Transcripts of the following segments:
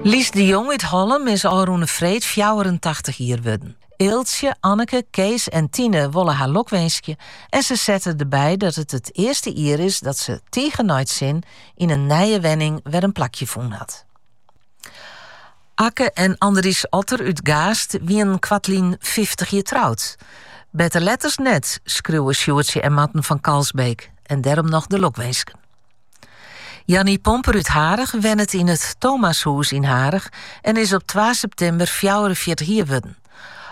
Lies de Jong út Hollum is ôfrûne freed fjouwerentachtich jier wurden. Eeltsje, Anneke, Kees en Tine wolle har lokwinskje en se sette derby dat it it earste jier is dat se, tige nei it sin, yn in nije wenning wer in plakje fûn hat. Akke en Andries Otter út Gaast wienen koartlyn fyftich jier troud. Better let as net, skriuwe Sjoerdtsje en Marten fan Kalsbeek en dêrom noch de lokwinsken. Jannie Pomper út Harich wennet yn it Thomashûs yn Harich en is op twa septimber fjouwerenfjirtich jier wurden.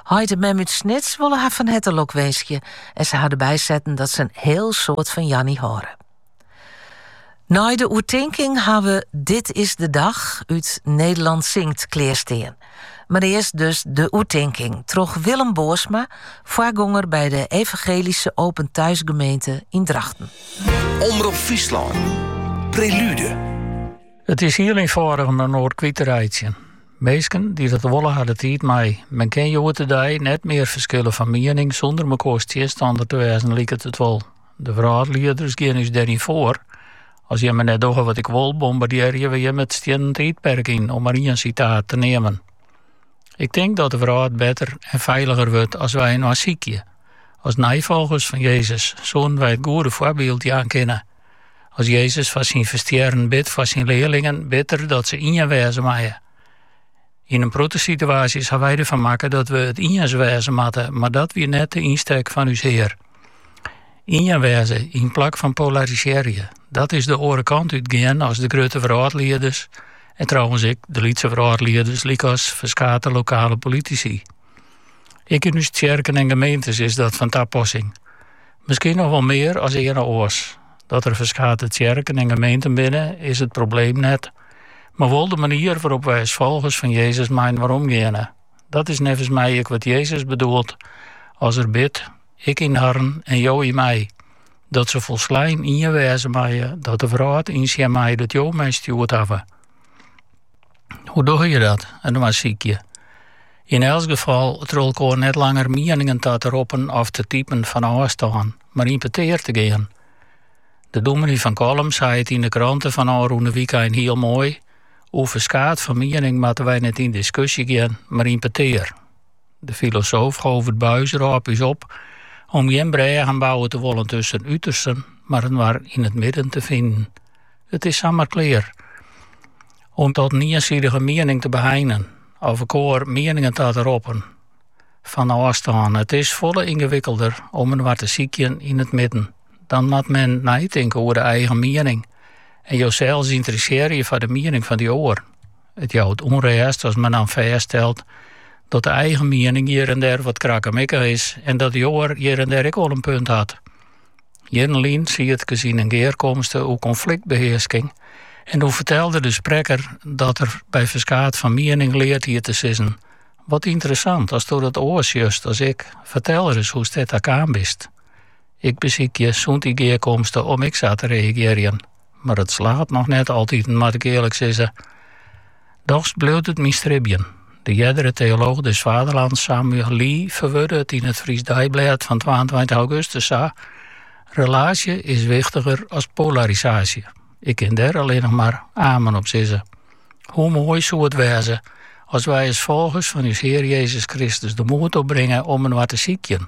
Heit en mem út Snits wolle har fan herte lokwinskje en se ha derby setten dat se in hiel soad fan Jannie hâlde. Nei de oertinking ha we Dit is de dag út Nederland Zingt klearstean. Mar earst dus de oertinking troch Willem Boersma, foargonger by de Evangelyske Open Thuis Gemeente yn Drachten. Omrop Fryslân, Prelude. It is hiel ynfâldich om inoar kwyt te reitsjen. Minsken dy't dat wolle ha de tiid mei. Men kin hjoed-de-dei net mear ferskille fan miening sûnder mekoars tsjinstanner te wêzen, liket it wol. De wrâldlieders gean ús dêryn foar. As jimme net dogge wat ik wol, bombardearje we jimme it stiennen tiidperk yn, om mar ien sitaat te neamen. Ik tink dat de wrâld better en feiliger wurdt as wy inoar sykje. As neifolgers fan Jezus soenen wy it goede foarbyld jaan kinne. As Jezus foar syn ferstjerren bidt foar syn learlingen, bidt er dat se ien wêze meie. Yn in protte situaasjes ha wy derfan makke dat we it iens wêze moatte, mar dat wie net de ynstek fan ús Hear. Ien wêze yn plak fan polarisearje. Dat is de oare kant út gean as de grutte wrâldlieders en trouwens ek de lytse wrâldlieders lykas ferskate lokale politisy. Ek yn ús tsjerken en gemeentes is dat fan tapassing. Miskien noch wol mear as earne oars. Dat der ferskate tsjerken en gemeenten binne is it probleem net, mar wol de manier wêrop wy as folgers fan Jezus mei inoar omgeane. Dat is neffens my ek wat Jezus bedoelt as er bidt, Ik yn harren en jo yn my. Dat se folslein ien wêze meie, dat de wrâld ynsjen mei dat jo my stjoerd hawwe. Hoe dogge je dat, inoar sykje? Yn elts gefal troch elkoar net langer mieningen ta te roppen of te typen fan ôfstân, mar yn petear te gean. De dominee fan Kollum sei it yn de krante fan ôfrûne wykein hiel moai, Oer ferskaat fan miening moatte wy net yn diskusje gean, mar yn petear. De filosoof Govert Buijs rôp ús op om gjin brêgen bouwe te wollen tusken utersten, mar inoar yn it midden te finen. It is samar klear om tot in iensidige miening te beheinen, of elkoar mieningen ta te roppen fan ôfstân. It is folle yngewikkelder om inoar te sykjen yn it midden. dan moat men neitinke oer de eigen miening en josels ynteressearje foar de miening fan dy oar. It jout ûnrêst as men dan fêststelt dat de eigen miening hjir en dêr wat krakkemikkich is en dat dy oar hjir en dêr ek wol in punt hat. Hjirrenlyn siet ik yn in gearkomste oer konfliktbehearsking en doe fertelde de sprekker dat er by ferskaat oan miening leard hie te sizzen. Wat ynteressant, datsto dat oars sjochst as ik, fertel ris hoe'tst dêr ta kaam bist. Ik besykje sûnt dy gearkomste om ek sa te reagearjen, mar it slagget noch net altiten, moat ik earlik sizze. Dochs bliuwt it myn stribjen. De eardere teolooch des vaderlands Samuel Lee ferwurde it yn it Frysk Deiblêd fan twaentweintich augustus sa, Relaasje is wichtiger as polarisaasje. Ik kin dêr allinnich mar amen op sizze. Hoe moai soe it wêze as wy as folgers fan ús Hear Jezus Kristus de moed opbringe om inoar te sykjen,